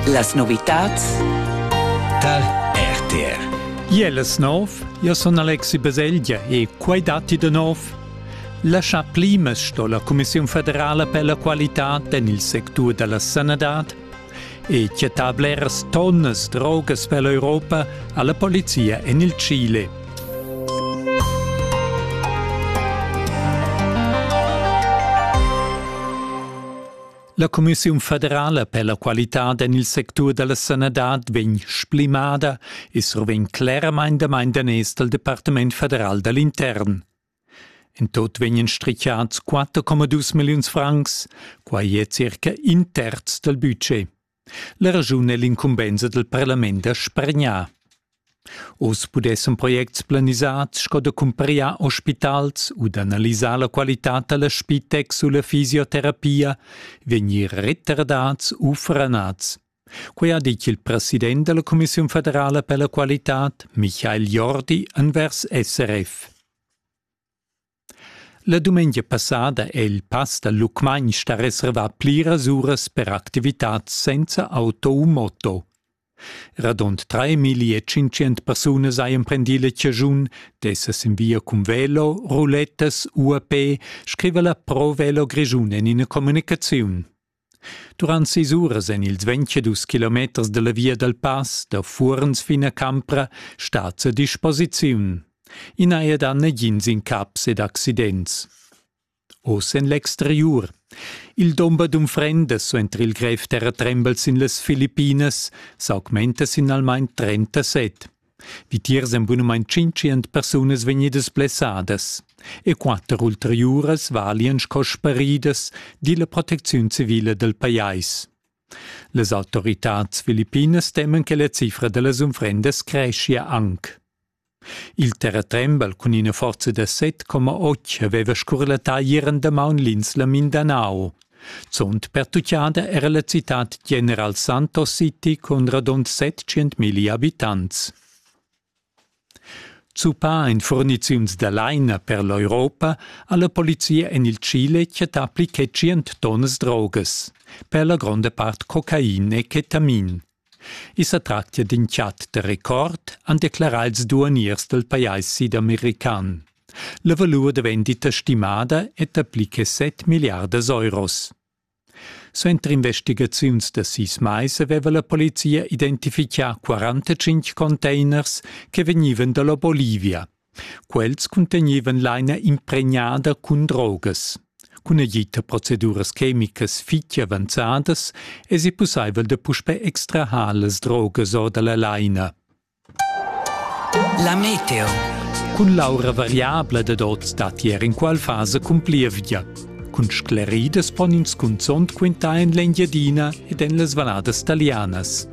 Las novitats tal RTR. Iel es nov, io sun Alexi Baselgia e quai datti da nov. La cha plimas sto la Commissiun federala per la qualità en il sectur da la sanadad e chattà bleras tonnas drogas per l'Europa alla polizia en il Chile. La cumissiun federala per la qualitad en il sectur da la sanadad vegn splimada e survegn cleramain damain daners dal Departament federal da l'intern. In tot vegnan strichiads 4,2 milliuns francs, quai è circa in terz dal budget. La raschun è l'incumbensa dal parlament da spargnar. Oz pudessan projects planisads sco da cumpriar ospitals u d'analisar la qualitad da la Spitex u la fisioterapia vegnir retardads u franads. Quai ha ditg il president da la Commissiun federala per la qualitad, Michael Jordi, envers SRF. La dumengia passada è il pass dal Lucmagn stà reservà pliras uras per activitads senza auto u moto. Radund 3500 persunas hajan prendì la chaschun d'esser sin via cun velo, rulettas u a pe, scriva la Pro Velo Grischun en ina communicaziun. Durant sis uras en ils ventadus kilometers dalla via dal pass da Fuorns fin a Campra stat a disposiziun. I n'ha er dà nagins incaps ed accidents. Oz en l'exteriur. Il domber d'unfrendas entr il grev terratrembel sin las Filippinas s'augmenta sin almain 37. Vitiers èn bunamain tschintschient persunas vegnidas blessadas e quatter ulteriuras valian sco sparidas, di la protecziun civila dal pajais. Las autoritads filippinas teman che la cifra da las unfrendas creschia anc. Il terratrembel cun ina forza da 7,8 aveva scurlattà ier en damaun l'insla Mindanao. Zunt pertuchada era la citad General Santos City cun radund 700.000 abitants. Zuppà en furniziuns da laina per l'Europa ha la polizia en il Chile chattà pli che 100 tonnas drogas, per la gronda part cocain e ketamin. I sa tractia d'in chat da record, han declerà ils duaniers dal pajais sidamerican. La valur da vendita stimada è dapli che set milliardas euros. Suenter investigaziuns da sis mais aveva la polizia identifichà 45 containers che vegnivan da la Bolivia, Quels cuntegnevan laina impregnada cun drogas. Cun agid da proceduras chemicas fitg avanzadas èsi pussaivel da puspè extrair las drogas or da la laina. La meteo. Cun l'aura variabla dad oz datti er inqual fasa cun plievgia. Cun scleridas pon ins cunzont quintar en l'Engiadina ed en las valladas talianas.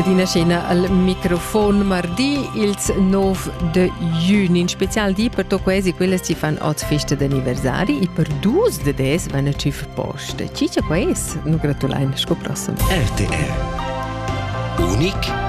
Adina scena al microfon mardi ils 9 de juni. In special di per to quasi quelle ci fan oz festa d'anniversari e per dus de des van a cif posta. Cicia quais, nu gratulain, sco prossimo. RTR. Unic